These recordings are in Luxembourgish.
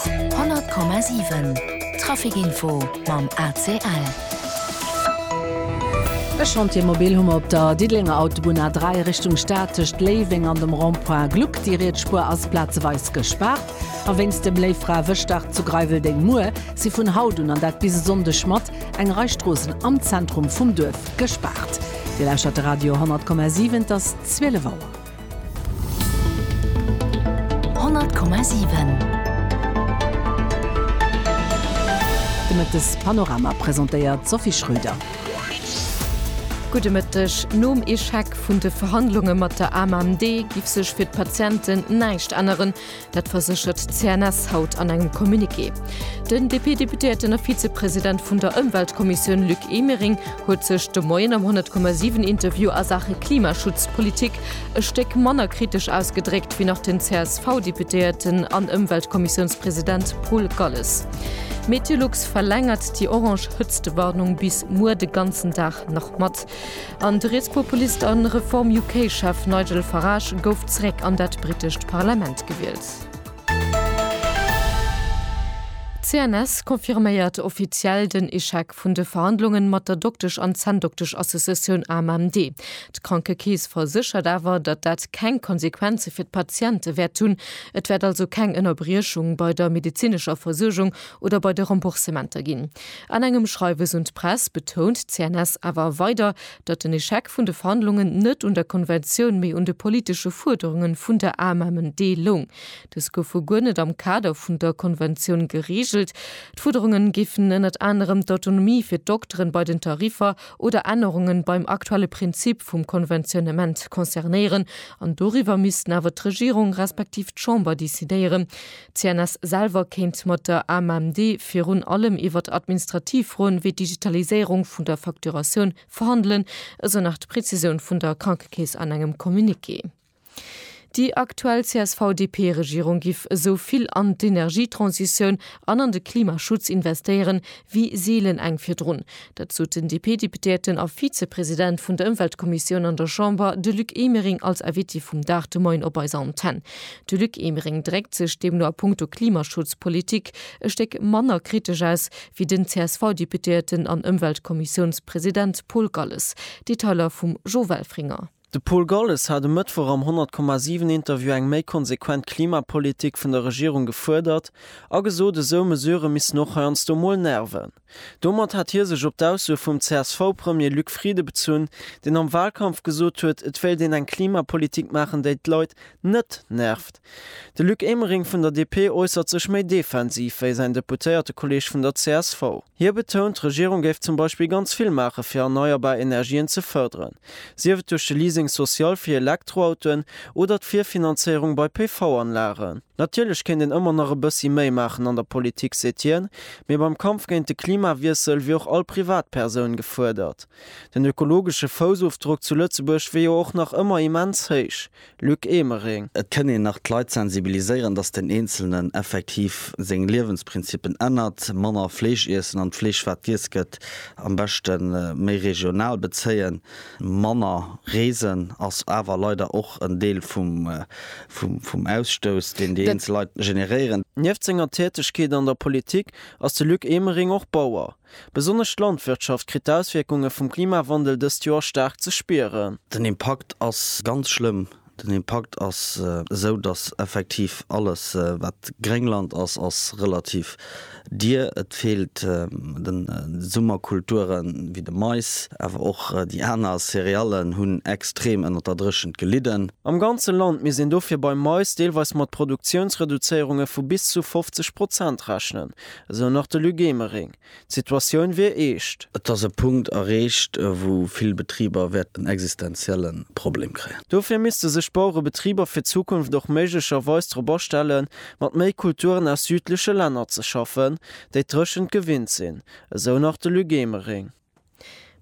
100,7 Trafic Info mam ACL. E Chantier mobil hu mer op der Diddelenger Autobunn A3 Richtung Stad tëscht Léiweng an dem Rond-point Gluck. Déi riets Spuer ass plazeweis gespaart. A wéinst dem Léiffraewëschdag zu Greiweldeng muer si vun haut un, an dat bis e Sonndeg mat, eng Rei Stroossen am Zentrum vum Duerf gespaart. Dir lauschtert de Radio 100,7, et ass 12 Auer. De Mëttes Panorama presentéiert d'Sophie Schröder. Gudde Mëtteg. Nom Echec vun de Verhandlunge mat der AMMD giff sech fir d'Patienten näischt änneren. Dat verséchert d'CNS haut an engem Communiqué. Den DP-Deputéierten a Vizepresident vun der Ëmweltkommissioun Luc Emering huet sech de Moien am 100,7 Interview a Saache Klimaschutzpolitik e Stéck manner kritesch ausgedréckt wéi nach den CSV-Deputéierten an Ëmweltkommissiounspresident Paul Galles. Meteolux verlängert déi orange Hëtztewarnung bis muer de ganzen Dag nach mat. An de Rietspopulist an Reform UK Chef Nigel Farage gouf zeréck an dat britescht Parlament gewielt. CNS confirméiert offiziell den Echec vun de Verhandlungen mat der Doktesch an Zänndoktesch Associatioun AMMD. D'Krankekeess verséchert awer, datt dat keng Konsequenze fir d'Patiente wäert hunn. Et wäert also keng Ënnerbriechung bei der medezinescher Versuergung oder bei de Remboursementer ginn. An engem Schreiwes un d'Press betount d'CNS awer weider, datt den Echec vun de Verhandlungen net un der Konventioun, mee un de politesche Fuerderunge vun der AMMD loung. Dës goufe guer net am Kader vun der Konventioun gereegelt. D'Fuerderunge géifen ënnert anerem d'Autonomie fir d'Dokteren bei den Tariffer oder Ännerungen beim aktuelle Prinzip vum Konventionnement concernéieren. An doriwwer missten awer d'Regierung respektiv d'Chamber decidéieren. D'CNS selwer kéint mat der AMMD virun allem iwwert administrativ Froen, wéi d'Digitaliséierung vun der Facturatioun, verhandelen, esou nach d'Prezisioun vun der Krankekeess an engem Communiqué. Déi aktuell CSV-DP-Regierung giff esou vill an d'Energietransitioun an an de Klimaschutz investéieren, wéi seelen eng virdrun. Dat sot den DP-Deputéierten a Vizepresident vun der Ëmweltkommissioun an der Chamber, de Luc Emering, als Invité vum Dag de Moien op eiser Antenn. De Luc Emering dréckt sech deemno a punkto Klimaschutzpolitik e Stéck manner kritesch aus wéi den CSV-Deputéierten an Ëmweltkommissiounspresident Paul Galles. Detailer vum Jo Welfringer. De Paul Golles hat e Mëttwoch am 100,7 Interview eng méi konsequent Klimapolitik vun der Regierung gefuerdert a gesot, esou Mesurë missten och heiansdo mol nerven. Domat hat hie sech op d'Aussue vum CSV-Premier Luc Frieden bezunn, deen am Walkampf gesot huet, et wéilt een eng Klimapolitik maachen, déi d'Leit net nervt. De Luc Emering vun der DP äussert sech méi defensiv wéi säin Deputéiertekolleeg vun der csv. Hie betount, d'Regierung géif zum Beispill ganz vill maache fir erneierbar Energien ze fërderen, sief et duerch de Leasing social fir Elektroautoen oder d'Virfinanzéierung bei PV-Anlagen. Natierlech kéint een ëmmer nach e bëssi méi maachen an der Politik, seet hien, mee beim Kampf géint de Klimawiessel wier och all Privatpersoun gefuerdert. Den ökologesche Foussofdrock zu Lëtzebuerg wier jo och nach ëmmer immens héich, Luc Emering. Et kënn een nach d'Leit sensibiliséieren, datt den Eenzelnen effektiv seng Liewensprinzipen ännert, manner Fleesch iessen an d'Fleesch wat giess gëtt am beschte méi regional bezéien. Manner reesen ass awer leider och en Deel vum Ausstouss, deen déi eenzel Leit generéieren. Nieft senger Tätegkeet an der Politik ass de Luc Emering och Bauer. Besonnesch d'Landwirtschaft kritt d'Auswierkunge vum Klimawandel dëst Joer staark ze spieren. Den Impakt ass ganz schlëmm. Den Impakt ass esou, datt effektiv alles, wat Gréngland ass, ass relativ dier. Et feelt de Summerkulture wéi de Mais, awer och déi aner Céréallen hunn extrem ënner der Dréchent gelidden. Am ganze Land misst een dofir beim Mais deelweis mat Produktiounsreduzéierunge vu bis zu 50 Prozent rechnen. Esou nach de Luc Emering. D'Situatioun wier eescht. Et ass e Punkt erreecht, wou vill Betriber wäerten en existenzielle Problem kréien. Dofir misste sech d'Bauerebetriber fir d'Zukunft och méiglecherweis drop astelle mat méi Kulturen aus südleche Länner ze schaffen, déi d'Dréchent gewinnt sinn. Esou nach de Luc Emering.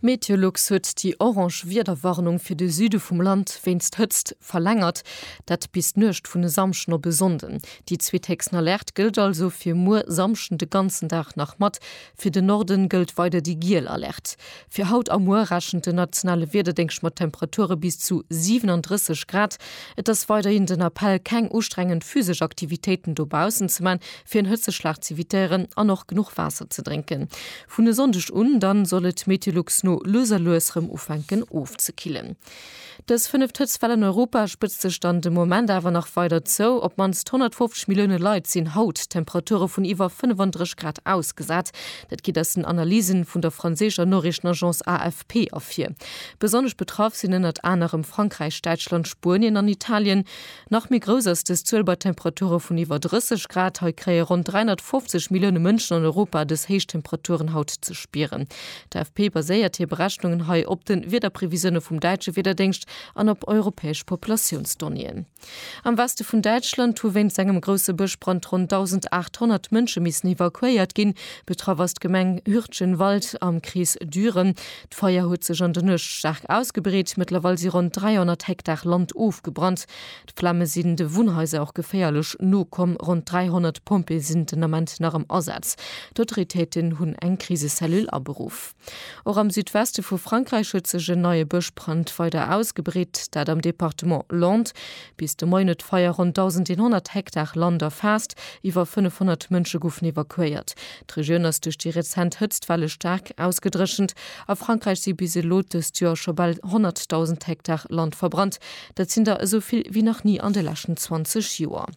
Meteolux huet déi orange Wiederwarnung fir de Süde vum Land wéinst Hëtzt verlängert, dat bis d'Nuecht vun e Samschden op e Sonnden. Déi zweethéchsten Alerte gëllt also fir muer Samschden de ganzen Dag nach mat. Fir de Norden gëllt weider déi giel Alerte. Fir haut a muer rechent den nationale Wiederdéngscht mat Temperature bis zu 37 Grad. Et ass weiderhin den Appell, keng ustrengend physesch Aktivitéiten dobaussen ze man, fir en Hëtzeschlag z'evitéieren an och genuch Waasser ze drénken. Vun e Sonndeg un dann soll et Meteolux no lues a lues rem ufänken ofzekillen. Dës fënneft Hëtztwell an Europa spëtzt sech dann de Moment awer nach weider zou. Op d'mannst 150 Millioune Leit sinn haut Temperature vun iwwer 35 Grad ausgesat. Dat geet aus den Analysen vun der franséischer Noriichtenagence AFP ervir. Besonnesch betraff sinn ënnert anerem Frankräich, Däitschland, Spuenien an Italien. Nach méi grouss ass dës Zuel bei Temperature vun iwwer 30 Grad. Hei kréie ronn 350 Millioune Mënschen an Europa dës héich Temperaturen haut ze spieren. D'AFP baséiert hir Berechnungen hei op de Wiederprevisioune vum däitsche Wiederdéngscht an op europäesch Populatiounsdonnéeën. Am Weste vun Däitschland hu wéinst engem grousse Bëschbrand ronn 1.800 Mënsche missen evakuéiert ginn. Betraff ass d'Gemeng Hürtgenwald am Krees Düren. D'Feier huet sech an der Nuecht staark ausgebreet. Mëttlerweil si ronn 300 Hektar Land ofgebrannt. D'Flamme sinn de Wunnhaiser och geféierlech no komm. Ronn 300 Pompjeeë sinn den Ament nach am Asaz. D'Autoritéiten hunn eng Krisecellule aberuff. Och am Südweste vu Frankräich huet sech en neie Bëschbrand weider ausgebreet, dat am Departement Landes. Bis de Moien huet d'Feier ronn 1.100 Hektar Land erfaasst. Iwwer 500 Mënsche goufen evakuéiert. D'Regioun ass duerch déi rezent Hëtztwelle staark ausgedréchent. A Frankräich si bis elo dëst Joer scho bal 100.000 Hektar Land verbrannt. Dat sinn der esou vill wéi nach ni an de leschten 20 Joer.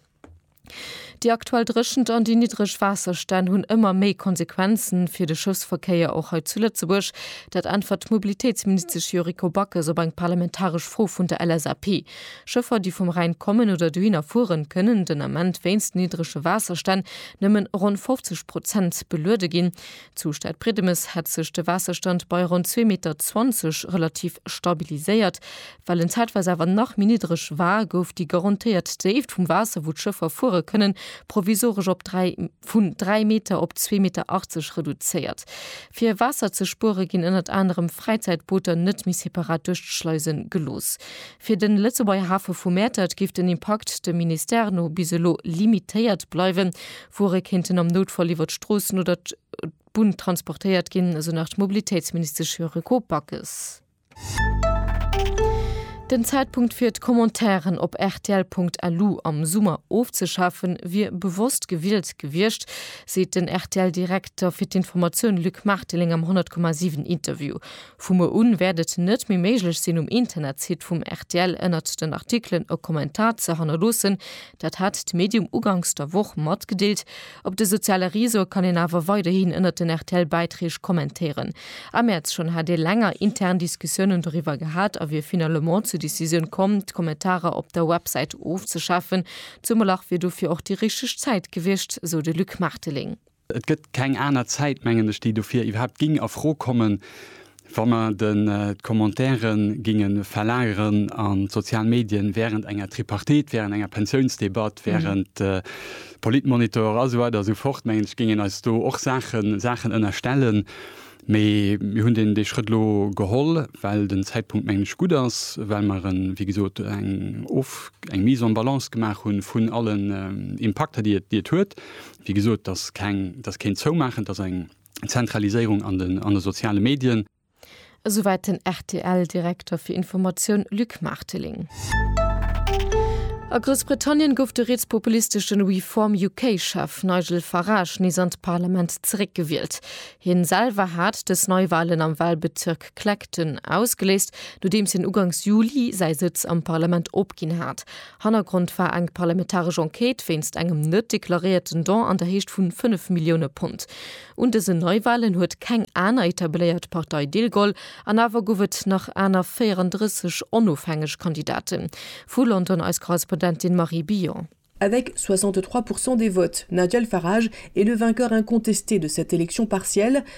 Déi aktuell Dréchent an déi niddreg Waasserstänn hunn ëmmer méi Konsequenze fir de Schëffsverkéier och hei zu Lëtzebuerg. Dat äntwert d'Mobilitéitsministesch Yuriko Backes op eng parlamentaresch Fro vun der LSAP. Schëffer, déi vum Rhäin kommen oder dohinner fueren, kënnen den Ament wéinst niddrege Waasserstänn nëmmen ronn 50 Prozent beluede ginn. Zu Stadbriedemes hätt sech de Waasserstand bei ronn zwee Meter zwanzeg relativ stabiliséiert. Well en zäitweis awer nach méi niddreg war, gouf déi garantéiert Déift vum Waasser, wou d'Schëffer fuere kënnen, provisoresch op dräi. vun 3 Meter op 2,80 Meter reduzéiert. Fir Waasser ze spuere ginn ënnert anerem Fräizäitbooter net méi separat duerch d'Schleise gelooss. Fir den Lëtzebuerger Hafe vu Mäertert géif den Impakt dem Ministère no bis elo limitéiert bleiwen. Wuere kéinten am Noutfall iwwer d'Stroossen oder d'Bunn transportéiert ginn, esou nach d'Mobilitéitsministesch Yuriko Backes. Den Zäitpunkt fir d'Commentairen op rtl.lu am Summer ofzeschafen, wier bewosst gewielt gewiescht, seet den RTL-Direkter fir d'Informatioun Luc Marteling am 100,7 Interview. Vu muer un wäert et net méi méiglech sinn, um Internetsite vum rtl ënnert den Artikelen e Kommentar ze hannerloossen. Dat hat d'Medium uganks der Woch matgedeelt, Op de soziale Reseaue kann een awer weiderhin ënnert den RTL-Bäitreeg kommentéieren. Am Mäerz schonn hat ee länger intern Diskussiounen doriwwer gehat a wier finalement zur Decisioun komm, d'Kommentarer op der Websäit ofzeschafen. Zumol ach wier dofir och déi richteg Zäit gewiescht, sou de Luc Marteling. Et gëtt keng aner Zäit, mengen ech, déi dofir iwwerhaapt géing a Fro kommen. Wa mer d'Commentaiere géinge verlageren an d'sozial Medien während enger Tripartite, während enger Pensiounsdebatt, während Politmonitor a sou weider a sou fort, mengen ech, géingen eis do och Saachen ënnerstellen. Mee mir hunn dee Schrëtt elo geholl, well den Zäitpunkt, mengen ech, gutt ass, well mer, wéi gesot, eng Mise en balance gemaach hu vun allen Impakter, déi et huet. Wéi gesot, et ass keen Zoumaachen, et ass eng. Zentraliséierung an de soziale Medien. Esouwäit den RTL-Direkter fir Informatioun Luc Marteling. A Groussbritannien gouf de rietspopulisteschen Reform UK Chef Nigel Farage nees an d'Parlament zeréck gewielt. Hien selwer hat dës Neiwahlen am Wahlbezirk Clacton ausgeléist, nodeems hien ugangs Juli säi Sëtz am Parlament opginn hat. Hannergrond war eng parlamentaresch Enquête wéinst engem net deklaréierten Don an der Héicht vu 5 Millioune Pond. Un dësen Neiwalen huet keng aner etabléiert Partei deelgeholl an awer gouf et nach aner 34 onofhängeg Kandidaten. Vu London eis Korrespondentin Marie Billon. Avec 63 % des votes, Nigel Farage est le vainqueur incontesté de cette élection partielle,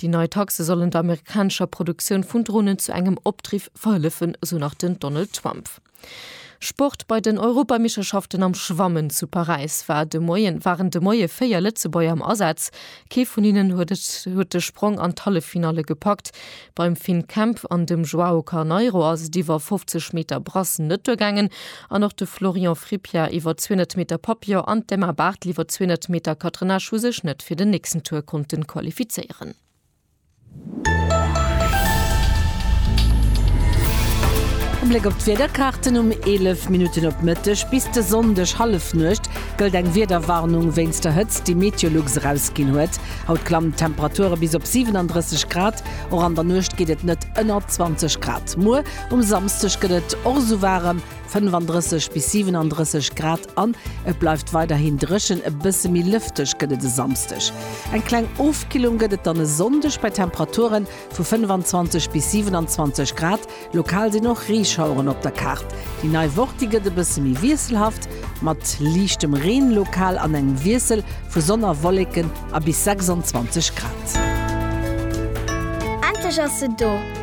Déi nei Taxe sollen der amerikanescher Produktioun vun Dronen zu engem Opdriff verhëllefen, esou nach den Donald Trump. Sport, Bei den Europameeschterschaften am Schwammen zu Paräis war de Moien waren de Moie véier Lëtzebuerger am Asaz. Kee vun hinnen huet et huet de Sprong an d'Halleffinalle gepackt. Beim Finn Kemp an dem Joao Carneiro ass et iwwer 50 Meter Brasse net duergaangen. An och de Florian Frippier iwwer 200 Meter Papillon an d'Emma Barthel iwwer 200 Meter Catenage hu sech net fir den nächsten Tour konnte qualifizéieren. E Bléck op d'Wiederkaarten, Um 11 Minutten op Mëtteg bis de Sonndeg Hallefnuecht gëllt eng Wiederwarnung wéinst der Hëtzt, déi Meteolux erausginn huet. Haut klammen d'Temperature bis op 37 Grad, och an der Nuecht geet et net ënner 20 Grad. Muer Um Samsdeg gëtt et och esou waarem, 35 bis 37 Grad an et bleift weiderhin dréchen. E bësse méi lëfteg gëtt et e Samsdeg. Eng kleng Ofkillung gëtt et dann e Sonndeg bei Temperature vu 25 bis 27 Grad. Lokal sinn och Reeschaueren op der Kaart. Déi nei Woch, déi gëtt e bësse méi wiesselhaft mat liichtem Reen lokal an engem Wiessel vu Sonn a Wolleken a bis 26 Grad. Endlech ass se do!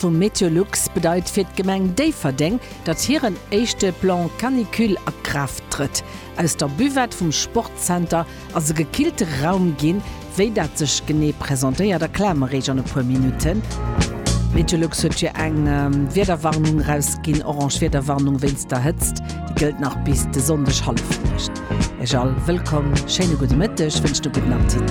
vum Meteolux bedeit fir d'Gemeng Déifferdeng, datt hiren éischte Plan Canicule a Kraaft trëtt. Aus der Buvette vum Sportzenter ass e gekillte Raum ginn. Wéi dat sech genee presentéiert, erkläre mer Iech an e puer Minutten. Meteolux huet jo eng Wiederwarnung erausginn, orange Wiederwarnung wéinst der Hëtzt. Déi gëllt nach bis de Sonndeg Hallefnuecht. Iech all wëllkomm, schéine gudde Mëtteg wënscht e gudden Appetit.